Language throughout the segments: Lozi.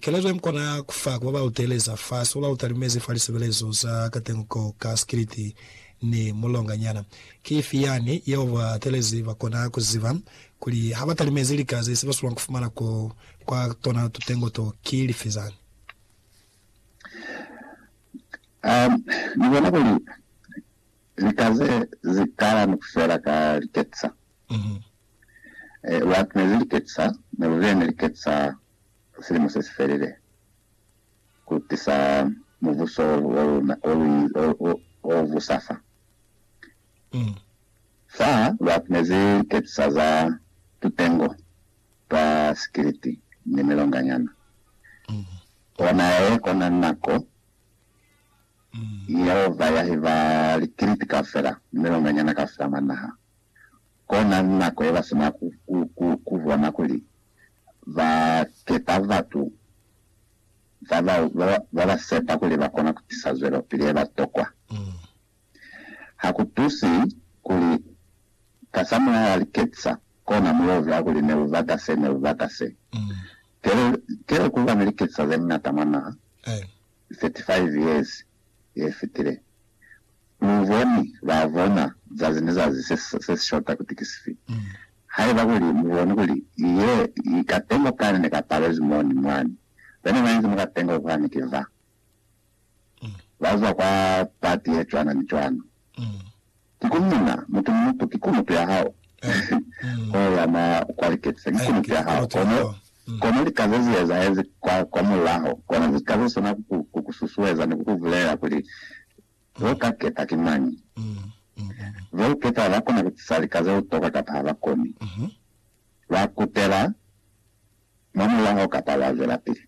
Kelezo ye mukona ya ku fa ku ba ba lu teeleza fa seo ba lu talimezi fa lisebelezo za katengo ka sikiliti ni mulonganyana, ki ifi yani yeo ba teelezi ba kona ku ziba kuli ha ba talimezi lika ze si ba sulwa ku fumana ko kwa tona tutengo to ki lifi zani? Ni bona kuli lika ze zi kala ni ku fela ka liketisa. Ee, lwa ne li liketisa, ne lu bile ne liketisa silimo se si felile, ku tisa Mubuso wa luna o busa fa. Fa lwa kunezi liketisa za tutengo twa sikiliti ni milonganyana, kona ye kona nako Yehova ya hiba likiliti kaufela ni milonganyana kaufela mwa naha. Kona ni nako ye ba sina ku bona kuli ba kepa batu ba ba sepa kuli ba kona ku tisa zwelopili ye ba tokwa. Ha ku tusi kuli kasamulaho li ketisa kona mu yo uzwa kuli ne u bata se, ne u bata se. Telo ku ba ni liketisa ze ñata mwa naha. 35 years ye fitile, lu boni ba bona zazi ni zazi se si shota kuti ki sifi. Haiba kuli mu boni kuli ye i katengo kani ne ka palezwi mo ni mwani, be ne ba inzi mwa katengo kwani ki ba ba zwa kwa pati ye cwana ni cwana. Mm. Kikuli Mina, mutu ni mutu ki kunupi ya hao, ho yana kwa liketisa, ki kunupi ya hao, kono, kono lika ze zi ezahezi kwa, kwa mulaho, kona ze ka ze sona ku ku, ku ku susueza ni ku ku bulela kuli, Bo ka keta ki mañi? Bo u keta ba kona ku tisa lika ze u toka kapa ha ba koni. Ba kutela. Mwa mulaho kapa lwa zwelapili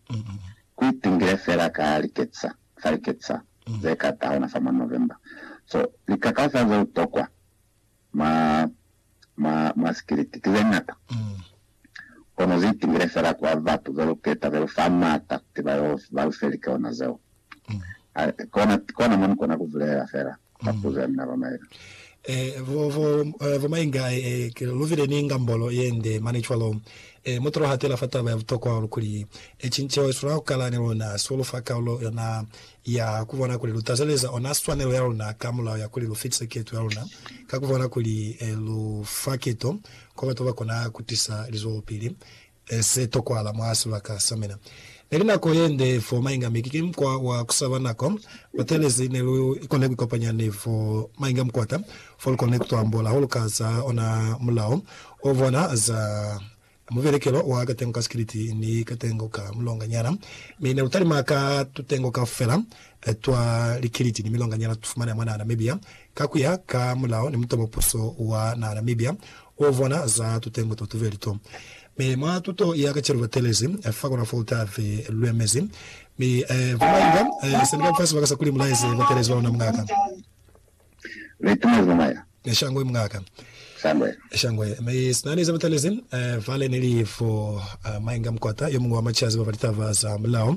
ku itingile fela ka liketisa fa liketisa ze ka tahona fa mwa November. So, likakaufa ze u tokwa mwa, mwa, mwa sikiliti ki ze ñata, kono zi itingile fela kwa batu ze lu keta, ze lu fa maata kuti ba yo, ba lu fe likeona zeo. Kona mo nikona kuvulelela fela mapuzo ya mina bamaenga. Ee, bamaenga, luvile ni ngambolo yende mane cwalo. Ee, mutu lohatela fa taba ya butokwa hahulu kuli ecin ceo iswanela kukala ni luna, so lufa kaulo yona ya kubona kuli lu tazeleza ona swanelo ya luna ka mulao ya kuli lu fitise keto ya luna ka kubona kuli lu fa keto kwa batu babakona kutisa lizwelopili e se tokwala mwa sibaka sa mina. Neli nako yende fo mainga mi ki mukwa wa kusaba nako. Batelezi ne lu kone kuikopanya ni fo mainga mukwata fo lu kone kutuambola ha lu ka za ona mulao o bona za mubelekelo wa katengo ka sikiliti ni katengo ka mulonganyana. Mi ne lu talima ka tutengo kaufela twa likiliti ni milonganyana tufumanea mwa naha Namibia Ka kuya ka mulao ni mutobo puso wa naha Namibia u vona za tutengwe to tubeli to. Mi mwa tuto ya kacenu ba telezi fa kona fo ta ve lwe mezi. Mi ba mainga sendika mfasi ba ka sa kuli mulaezi ba telezi ba luna mungaka. Mi tuna zamaya. Shangwe mungaka. Shangwe. Shangwe. Mi sina ni za ba telezi vale nili fo mainga mukwata yo mungwe wa machazi ba ba litaba za mulao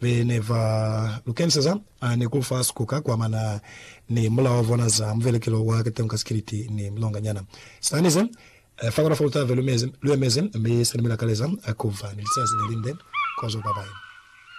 Be ne ba lu keniseza a ne ku fa sikuka kwa mana ni mulao wa bona za muvelekelo wa kateño ka sikiliti ni milonganyana. Sitani ze fa kona fa lu tave lu mezi, lu emezi, mi sa ni mila kaleza ku ba ni lizazi le linde kozo ba bañwi.